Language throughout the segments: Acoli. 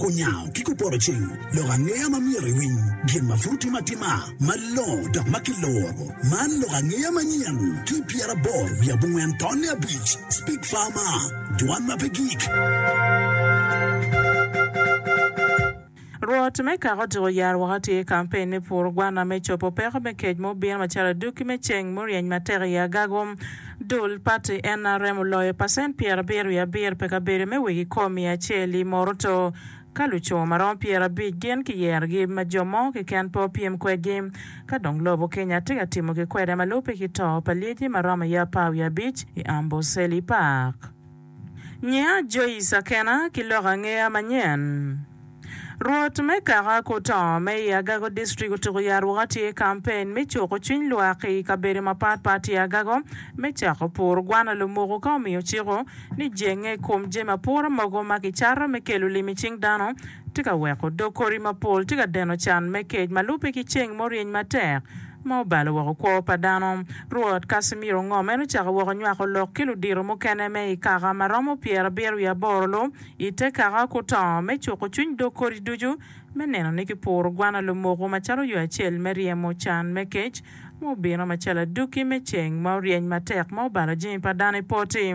Kunyango ki kupotoceng lok angeya ma myero iwiny gin ma pud timo atima malongo dok ma kiloro. Man lok angeya manyen ki pyeraboro wiye abongwen tonne abic, Speak Farmer, Dwan ma pe gik. Rwot me kaka otyeko yaro waka tye i kampen me puro gwana me cobo peko me kec ma obino macalo adwoki me ceng muryeny matek i agago. Dul pati NRM oloyo pacent pyerabiro wiye abiro pi kabedo me wegi kom miya acel i Moroto ka luco ma romo pyerabic gin ki yerogi ma jo mo keken pe opyem kwedgi. Ka dong lobo Kenya tye ka timo ki kwede ma lubbe ki to pa lyeci ma romo aye apar wiye abic i Amboseli Park. Nyiya Joyce Akena ki lok angeya manyen. Rwot me kaka ki otongo me i Agago District otuku ya ruka tye i campaign me cuku cwiny lwak i kabedo mapat pat i Agago me cako puru gwano lumuku ka omiyo ciku ni jenge i kom jami apura mogo ma ki cato me kelo lim i cing dano tye ka weko dog kodi mapol tye ka deno can me kec ma lube ki ceng muryeny matek ma obalo woko kwo pa dano. Rwot Casimiro Ngom en ocako woko nywako lok ki ludito mukene me i kaka ma romo pyerabiro wiye aboro lu i te kaka kuto me cuko cwiny dog kodi ducu me neno ni ki puro gwana lumoko macalo yo acel me ryemo can me kec ma obino macalo aduki me ceng ma oryeny matek ma obalo jami pa dano i poti.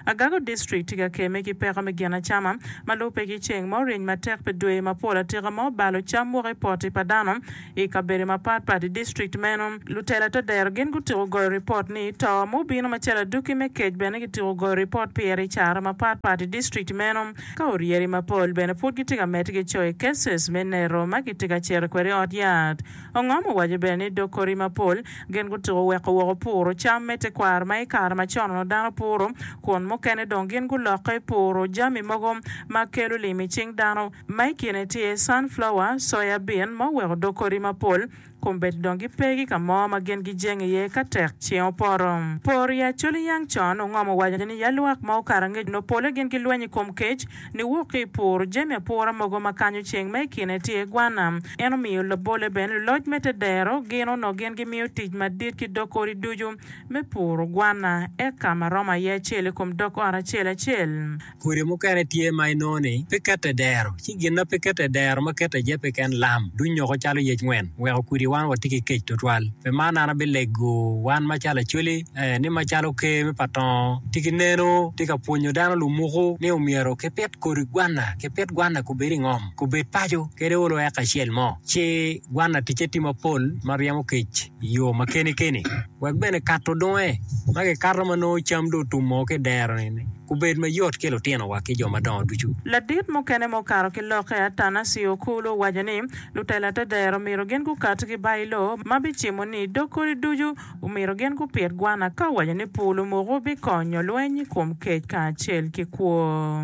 Agago District tye ka keme ki peko me gin acama ma lube ki ceng ma oryeny matek pi dwe mapol atika ma obalo cam woko i poti pa dano I kabedo mapatpat i distrikt meno, lutela te dero gin gutyeko goyo ripot ni to ma obino macalo aduki me kec bene kityeko goyo ripot pire i cara mapatpat i distrikt meno, ka oryeri mapol bene pud gitye ka medde ki coyo i cases me neto ma kitye ka cito kwede i ot yat. Ongom owaco bene ni dog koti mapol gin gutyeko weko woko puro cam me tekwaro ma i kare macon-nu dano puro kun mukene dong gin gulokke puro jami mogo ma kelo lim i cing dano, ma i kine tye sunflower, soya bean, ma oweko odok kodi mapol, kombeddi dong gipe ki ka mo ma gin gijeng iye ka tek ceng opoto. Por i Acholi Yang Chon ongomo waco ni ya lwak ma okato angec nongo pole gin gilweny i kom kec niwok ki i pur jami apura mogo ma kanyo ceng ma i kine tye gwana. En omiyo labolle bene luloc me te dero gin onongo gin gimiyo tic madit ki dok odi ducu me puro gwana eka ma romo aye acel i kom dok ot acel acel. Kodi mukene tye ma inongo ni pe kete dero, ci gin ma pe kete dero ma kete aye peken lam, dunyoko calo yec ngwen, weko kudi wan watye ki kec twatwal. Pi man an abilego wan macalo acoli, ee, ni macalo Ker me pa Tongo tye ki neno, tye ka pwonyo dano lumuku ni omyero kipit kodi gwanna, kipit gwanna kubed i ngom, kubed paco, kede olo eka acel mo, ci gwanna ticce tye mapol ma ryemo kec i yo ma keni keni. wek bene kato dunge ma kikato ma nongo cam dong otum moo ki i dero-ni obed mayot ki lutinowa ki jo madongo ducu. Ladit mukene ma okato ki lokke, Atanasio Okulu, owaco ni, Lutela te dero myero gin gukat ki ba i loo ma bicimo ni i dog kodi ducu. Omyero gin gupit gwana ka owaco ni pur lumuku bikonyo lweny i kom kec kacel ki kwo.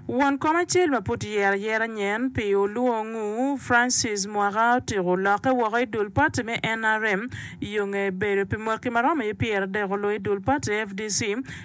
Won kom acel ma pud tyer ayera nyen pi olwongu, Francis Mwaka otiko lokke woko i dul pati me nrm yo nge bedo pi mwaki ma romo i pyeradek olo i dul pati fdc.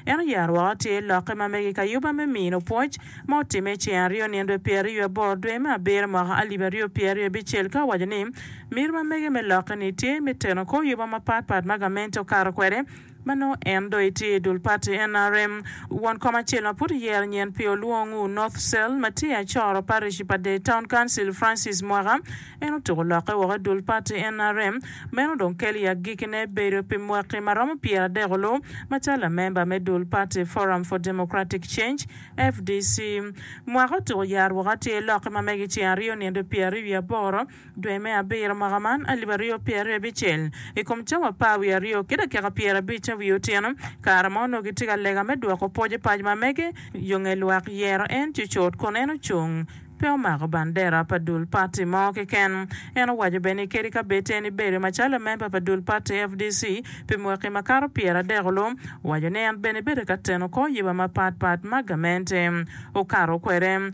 En oyaro woko tyer lokke ma mege i kayuba me mino pwoc ma otimme i ceng aryo nino dwe pyeraryo aboro dwe me abiro mwaka alip aryo pyeraryo abicel ka owaco ni miro ma mege me lokke ni tye me teno kor yuba mapat pat ma gamente okato kwede Ma nongo en dong etye i dul pati nrm. Won kom acel ma pud oyero nyen pi olwong u North Cell ma tye i Achoro Parish pa Dei Town Council Francis Mwaka en otuko lokke woko i dul pati nrm. Meno dong kelo i agikine bedo pi mwaki ma romo pyera adek olu macalo lamemba me dul pati Forum for Democratic Change, FDC. Mwaka otuko yaro woko atir lokke ma mege ceng aryo nino dong pyera aryo wiye aboro. Dwe me abiro mwaka man alip aryo pye aryo abicel, i kom cawa apar wiye aryo ki dakika pyer abic ca wiye otyeno, kare ma onongo kitye ka lega me dwoko pwoc i paco ma mege, yo nge lwak yero en cucut kun en ocung, pe omako bandera pa dul pati mo keken. En owaco bene ni kadi ka bed en ibedo macalo lamemba pa dul pati FDC pi mwaki makato pyer adek olu, waco ni en bene bedo ka teno kor yiba mapat pat ma gamente okato kwede.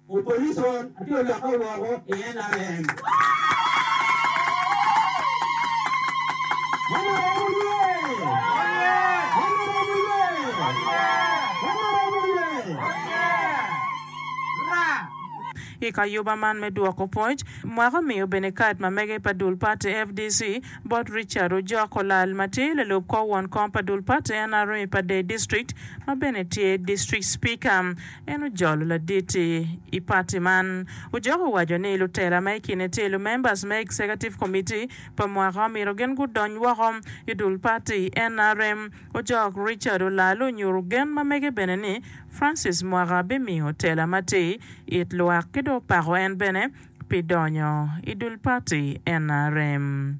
Opposition atye olokke woko i nrm. I kayuba man me dwoko pwoc, mwaka omiyo bene kad ma mege pa dul pati fdc bot Richard Ojok olal ma tye lalub kor won kom pa dul pati nrm pa Dei District ma bene tye District Speaker. En ojolo ladit i pati man. Ojok owaco ni lutela ma i kine tye lumembers me Executive Committee pa mwaka omyero gin gudony woko i dul pati nrm. Ojok Richard Olalo onyutu gen ma mege bene ni Francis Mwaka bimiyo tela matir it lwak ki dong opako en bene pi donyo i dul pati nrm.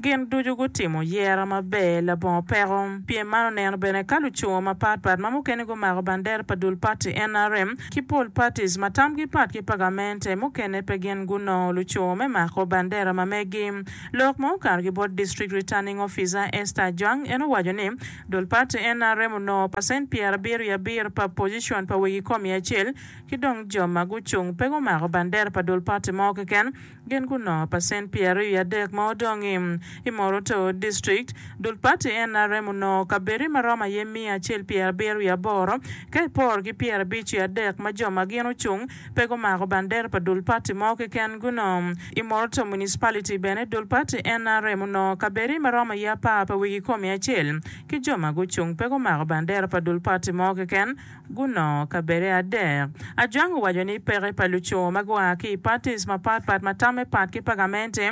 Gin ducu gutimo yero maber labongo peko. Pien man oneno bene ka lucungo mapat pat ma mukene gumako bandera pa dul pati nrm ki pol patis ma tamgi pat ki pa gamente mukene pe gin gunongo lucungo me mako bandera ma megi. Lok ma okato ki bot District Returning Officer Esther Ajwang en owaco ni dul pati nrm onongo pacent pyer abiro i abiro pa pocicion pa wegi kom i acel ki dong jo ma gucung pe gumako bandera pa dul pati mo keken Gin gunongo pacent pyeraryo i adek ma odongi. I Moroto district, dul pati nrm onongo kabedi ma romo aye miya acel pyerabiro wiye aboro, ka iporo ki pyerabic wiye adek ma jo ma gin ocung pe gumako bandera pa dul pati mo keken guno. I Moroto municipality bene dul pati nrm onongo kabedi ma romo aye apar pa wigi komi acel ki jo ma gucung pe gumako bandera pa dul pati mo keken, gunongo kabede adek. Ajwang owaco ni peke pa luco ma gua ki i patis mapat pat ma tamme pat ki pagamente,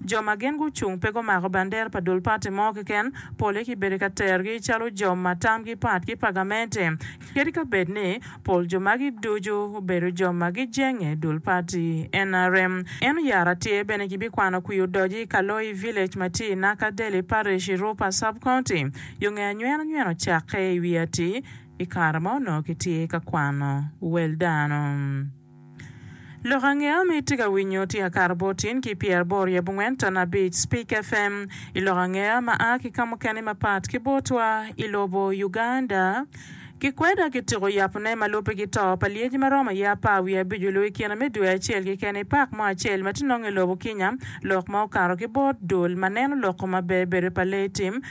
jo ma gin gucung pe gumako bandera pa dul pati mo keken, pole kibedo ka terogi calo jo ma tamgi pat ki pagamente, kadi ka bed ni pol jo magi ducu obedo jo ma gijenge dul pati nrm. En oyaro atir bene kibikwano kwir odoc i Kaloi Village ma tye i Naka Daly Parish i Rupa Sub-County, yo nge anywena nywena ocakke i wi atir. i kare ma onongo kitye ka kwano wel dano. Lok ange ma itye ka winyo tye Akato Botin ki Pyeraboro i Abongwen Ton Abic, Speak FM, i lok ange ma a ki ka mukene mapat ki botwa i lobo Uganda. Kikweda kitiko yapone ma lubbe ki to pa lyeci ma romo aye apar wiye abic oloo i kine me dwe acel keken i pak mo acel ma tye nongo i lobo Kinya, lok ma okato ki bot dul ma neno loko ma bedo bedo pa lee tim.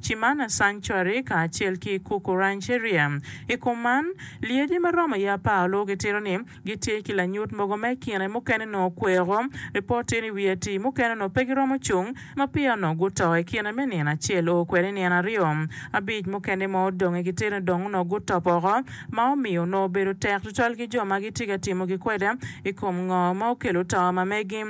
Cimana Sanctuary kacel ki Kuku Rancheria. I kom man, lyeci ma romo i apar lubo gitito ni gitye ki lanyut mogo ma i kine mukene nongo kweko. Ripot tye ni wi atii mukene onongo pe giromo cung ma peya onongo guto i kine me nino acel oo kwede i nino aryo. Abic mukene ma odong i gitito ni dong onongo gutop oko ma omiyo onongo obedo tek tutwal ki jo ma gitye ka timogi kwede i kom ngo ma okelo to ma megi.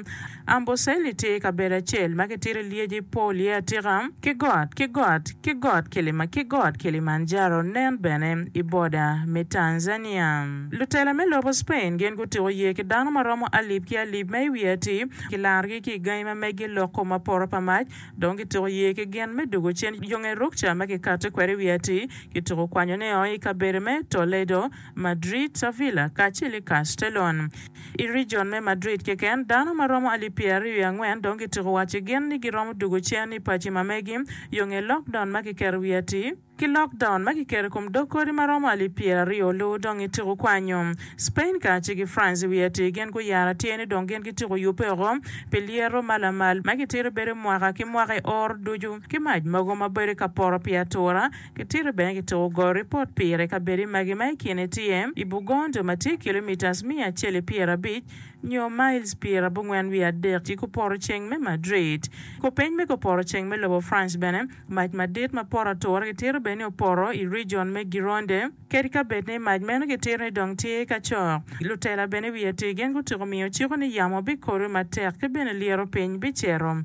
Amboseli tye kabedo acel ma kitito i lyeci pol iye atika, ki got ki got ki got Kilima ki got Kilimanjaro nen bene i boda me Tanzania. Lutela me lobo Spain gin gutuko yee ki dano ma romo alip ki alip ma i wiye atir, kilarogi ki i gangi ma meggi loko ma poto pa mac, dong kituko yee ki gin me dugo cen yonge rukca ma kikato kwede i wiye atir, kituko kwanyone o i kabedo me Toledo, Madrid, Sevilla, kacel ki Castellon. I region me Madrid keken, dano ma romo alip pyeraryo i angwen dong gityeko waco gin ni giromo dugo cen i paci ma megi yo nge lockdown ma kiketo i wi atir. Ki lockdown ma kiketo i kom dog kodi ma romo alip pyeraryo luwu dong ityeko kwanyo. Spain kacel ki France i wi atir gin guyaro atir ni dong gin gityeko yubbe oko pi lyeto ma lamal ma gitito bedo mwaka ki mwaka i or ducu ki mac mogo ma bedo ka poto pi atura Kitito bene ki tuko goyo ripot pire kabedi magi ma i kine tye i Bugondo ma tye kilomitas miya acel i pyera abic nyo miles pyer abongwen wiye adek ki kuporo ceng me Madrid. Kopeny me koporo ceng me lobo France bene, mac madit ma poto atura kitito bene ni opoto i region me Gironde. Kadi kabed ni mac meno kitito ni dong tye ka cok, lutela bene wiye tir gin gutyeko miyo ciko ni yamo bikodo matek ki bene lyeto piny bicito.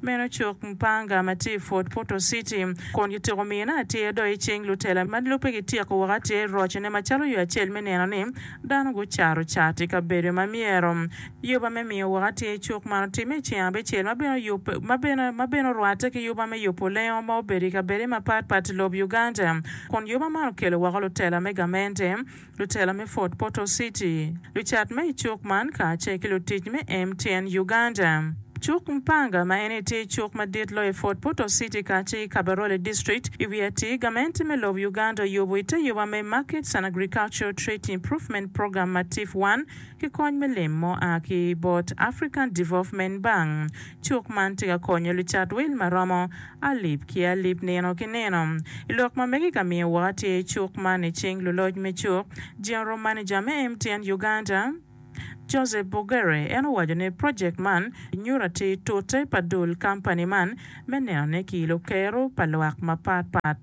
Meno cuk Mpanga ma tye i Fort Portal City kun kitiko mine atir dok i cing lutela ma lubbe kityeko woko atir i rocone macalo yo acel me neno ni dano gucato cat i kabedo ma myero. Yuba me miyo woko atir i cuk man otimme i ceng abicel ma bene oyubbe ma bene ma bene orwatte ki yuba me yubo lengo ma obedo i kabede mapat pat i lob Uganda kun yuba man okelo woko lutela me gamente lutela me Fort Portal City, lucat ma i cuk man kacel ki lutic me MTN Uganda. Cuk Mpanga ma en aye tye cuk madit loyo i Fort Portal City kacel ki Kabarole District i wi atir gamente me lobo Uganda oyubo i te yoba me Markets and Agricultural Trade Improvement Program, MATIP one, ki kony me lim mo a ki bot African Development Bank. Cuk man tye ka konyo lucat wil maromo. alip ki alip nino ki nino. I lok ma mege ka miyo woko atir i cuk man i cing luloc me cuk, General Manager me MTN Uganda, Joseph Bogere en owaco ni project man nyuto atir tute pa dul company man me nenone ki ilo kero pa lwak mapat pat.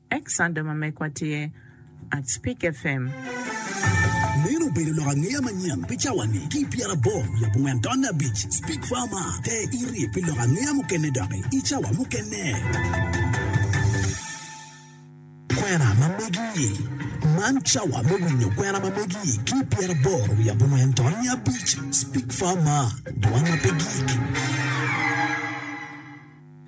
Ex Sando ma megwa tye at Spik FM. Meno obedo lok angeya manyen pi cawa-ni ki i pyera aboro lub ongwen tonne abic. Spik Farmer, te iri pi lok angeya mukene doki i cawa mukene. Kwena ma megi-i, Man cawa me winyo kwena ma megi-i ki i pyera aboro wiye abongwen tonne abic. Spik Farmer, Dwan ma pe gik.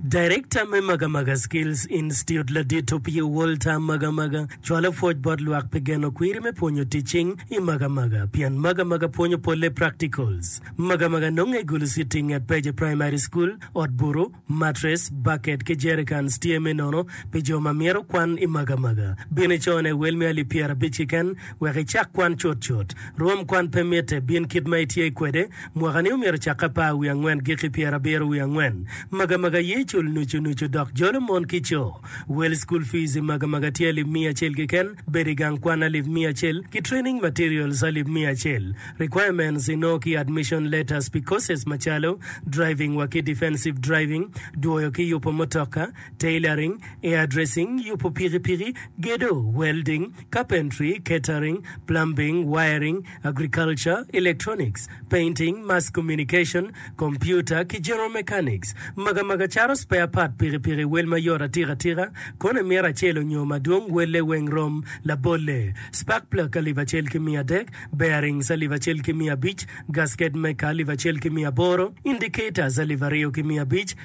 Darekta me Magamaga Skills Institute ladit opye Walter Magamaga cwalo pwoc bot lwak pi geno kwiri me pwonyo tic cing i Magamaga pien Magamaga pwonyo polle practicals. Magamaga nonge i Gulu City i nget Peje Primary School. Ot buru, matres, baket ki jericans tye me nono pi jo ma myero okwan i Magamaga. Bin icone wel me alip pyerabic kiken wek icak kwan cutcut. Rwom kwan pe mitte, bin kit ma itye kwede. Mwaka-ni omyero ocak apar wiye angwen giki pyerabiro wiye angwen. Magamaga aye icul nucu nucu dok jolo mon ki co. Wel School Fees i magamaga tye alip miya acel keken, bedo i gang kwan alip miya acel, ki Training Materials alip miya acel. Requirements inongo ki Admission Letters pi courses macalo, Driving wa ki Defensive Driving, Dwoyo ki Yupo Mutoka, Tailoring, Hairdressing, Yupo Pikipiki, Gedo, Welding, Carpentry, Catering, Plumbing, Wiring, agriculture, electronics, painting, mass communication, computer, ki general mechanics, magamaga cato spare part pikipiki, wel mayot atika tika, kono i mita acel onyo madwong welle weng rom, labolle, spark plug alip acel ki miya adek, bearings alip acel ki miya abic, gasket maker alip acel ki miya aboro, indicators alip aryo ki miya abic,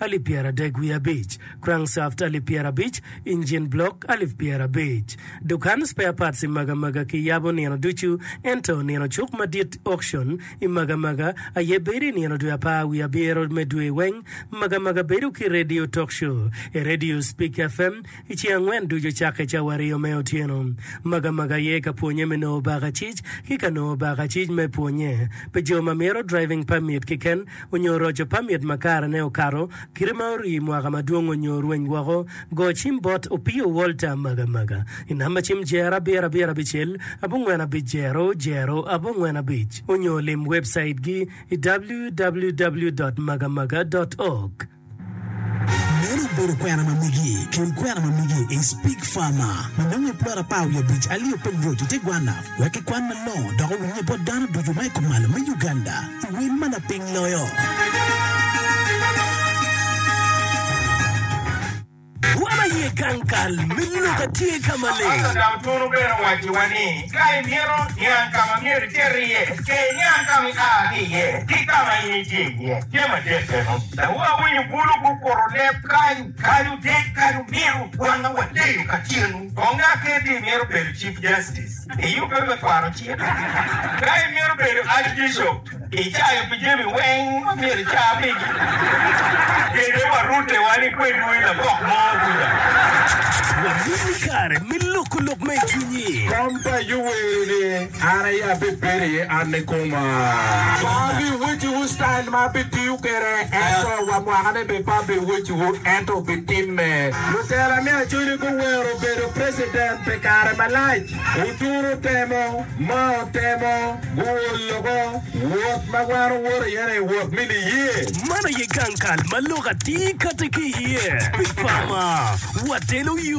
alip pyeradek wiye abic, crankshaft alip pyerabic, engine block alip pyerabic. Dukan spare parts i Magamaga kiyabo nino ducu, ento nino cuk madit, auction, i Magamaga aye bedo i nino dwe apar wiye abiro me dwe weng. Magamaga bedo ki radio talk show, e radio Speak FM, I ce angwen ducu cakke cawa aryo me otyeno, maga maga aye ka pwonye me nongo bakacic ki ka nongo bakacic me pwonye pi jo ma myero driving permit kiken onyo roco permit ma kare ne okato kite ma orii mwaka madwong onyo rweny woko go cim bot Opio Walter maga maga i namba cim jer abiro abiro abicel abongwen abic jero jero abongwen abic onyo lim website gi i www dot maga maga dot org. Meno obedo kwena ma migi kin kwena ma migi i Speke Farmer ma nongo i plot apar wiye abic alio piny road i te gwanna wek ki kwan malongo dok owinye bot dano ducu ma i kumalo me Uganda i wel ma laping loyo. Wa ma iye gang kal me Luka tye ka maleng. Pastor dok twero bene wacciwa ni ka imito niang ka ma myero iter iye, ce iniang ka ma ia ki iye ki ka ma in itye iye. Tye madit meno. Dawu awinyo bulu gukuto leb kany, Kadi otit kadi omiro, wanga wadeyo ka cenu. Kong ngat kene ti imito bedo Chief Justice, iyubbe me kwaro cik? Ka imito bedo Archbishop, Icayo pi jami weng ma myero ica pigi. Kede wa rute wa ni kwedwu i labok mo kuca. Wabino i kare me loko lok ma i cwinyi. Kom pa Ayub wero ni, An aye abibedo iye, an ni koma. Pe abiweciwu citail ma abitiyo kwede, ento wa mwakane bene pe abiweciwu, ento bitimme. Lutela me Acoli guwero bedo precedent pi kare malac. Oturo temo ma otemo guo loko wot ma wan owoto iye ni wot me niye. Man aye gang kal ma lok atir kati ki iye. Pi pama, watelo yo.